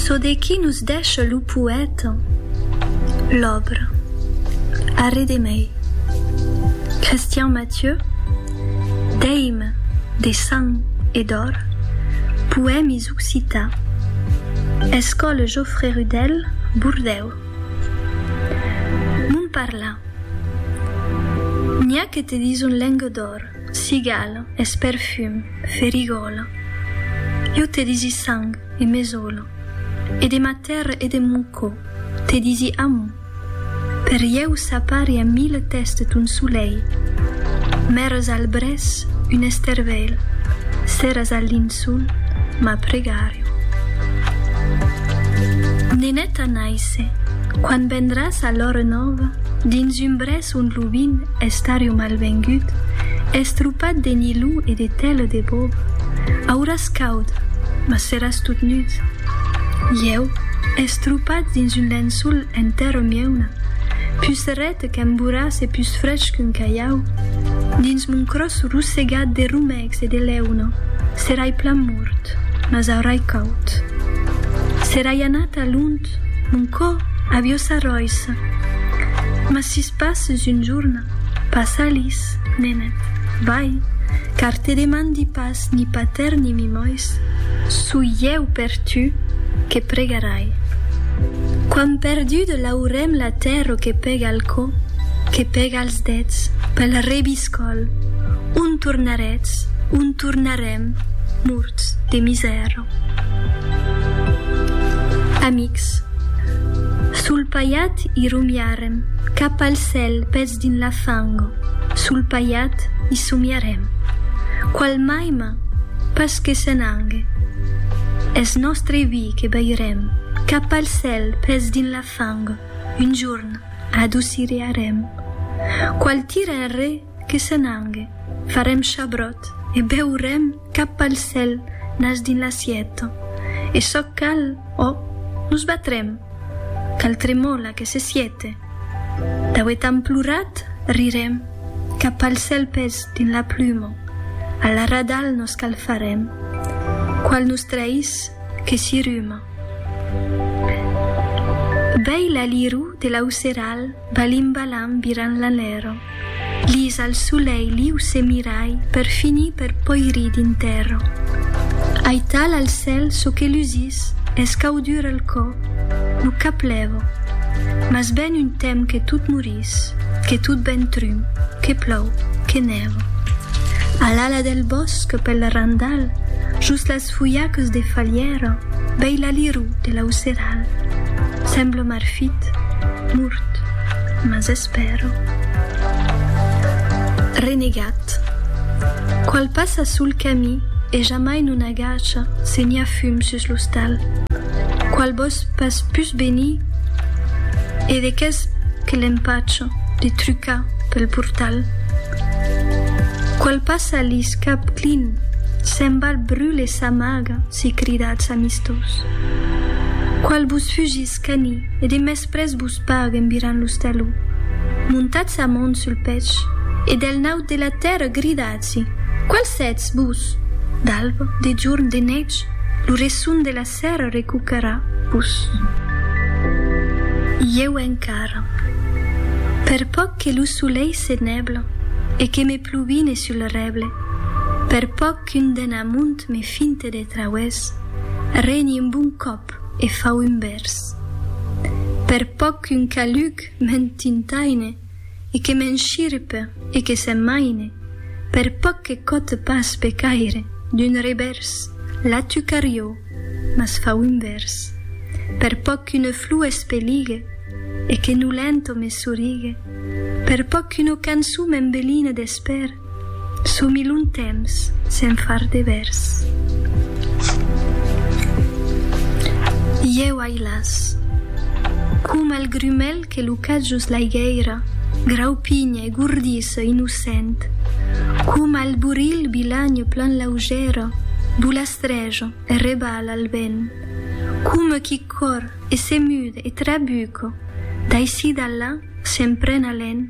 Çò de qui nos dèsha lo poèta, l'òbra, arrè de mei. Christian Mathieu, D'eime, de sang e d'òr, poèmis occità, Escòle Jofré Rudèl, Bordèu. Mon parlar. N'i a que te dison lenga d'òr. Cigala, es perfum, ferigòla. Jo te disi sang e mesola. E de ma tèrra e de mon cò te disi amor. Per ieu s'apari a mille tèstes ton solelh. Mères al brès, un estervelh. Seras al linçol, ma pregària. Neneta naisse, quan vendràs a l'òra nòva dins un brès. son lubin estariu malvengut, estropat de nilon e de tèla de bòb, auràs caud, mas seràs tot nud. Ieu, estropat dins un lençol en tèrra mieuna, pus ret qu'un borràs e pus frech qu'un calhau, dins mon cròs rossegat de romècs e de leuna, serai plan mort, mas aurai caud. Serai anat a lont Mon cò avió s'arròissa. Mas sis passes un jorn, pas Alis, nenet, vai, car te demandi pas ni patèr ni mimois, soi ieu per tu que pregarai. Quan perdude l'aurem la tèrro que pega al cò, que pega als dets, pel rebiscòl, on tornaretz, on tornarem, morts de misèro. Amics. Sul paiat i rumiarem, cap al cèl, pes dins la fango, sul paiat i somiarem. Qual maima? Pas que se n'angue. Es nòstre vi que beirem, cap al cèl, pes dins la fango, un jorn, adocirearem. Qual tira enrè? Que se n'angue, farem chabròt e beurem cap pal cèl nas dins l'assièta. E çò cal, ò, nos batrem! Cal tremòla que se siete. Dauet an plorat, rirem, cap pal cèl pes dins la pluma, a la radal nos cal farem. Qual nos traís, que s'i ruma. Bèi l'alirú de l'auceral. Balim balam viran l'alero. Lisa al solei l'iu se mirai per finir per poirir d'interro. Aital al cèl çò que lusís es cau dur al cò, lo cap lèvo. Mas ben un tem que tot morís, que tot ben trum, que plòu, que nèvo. A l'ala del bòsc pel randal, jos las. Los fulhacs de falhèra, vei l'aliró de l'auceral. Sembla marfit, mort, mas espèra. Renegat. Qual passa sul camí e jamai non agacha, se n'i a fum sus l'ostal. Qual vòs pas pus venir e de qu'es que l'empacha de trucar pel portal. Qual passa lis cap clin, se'n val brule sa maga, si cridatz amistós. Qual vos fugís cani e de mespres vos pague en virant los taló. Montatz sa mon sul pech e del naut de la tèrra gridatz-i, Qual sètz, vos? D'alba, de jorn, de nètge, lo resson de la. Ser recuperar vos. Ieu encara. Per pòc que lo solelh se nèble e que me pluvine sul rèble, per pòc qu'un den amunt me finte de trauès, reni un bon còp e fau un vèrs. Per pòc qu'un caluc m'entintaine, e que m'enshirpe e que se maine, per pòc que cote pas be caire, d'un revèrs, la tu carió, mas fau un vèrs. Per pòc qu'une flor espeligue e que nolento me sorigue, per pòc qu'una cançon m'embeline d'espèr, Somi long temps sen far de vèrs. Ieu ai las. Coma el grumèl que lo catjos l'aigèira, graupinha e gordissa innocent, coma el borilh bilhagn plan laugèra, bolastrèja e rebala al vent, coma qui còr e se mude e trabuca daicí d'allà sen pren alen,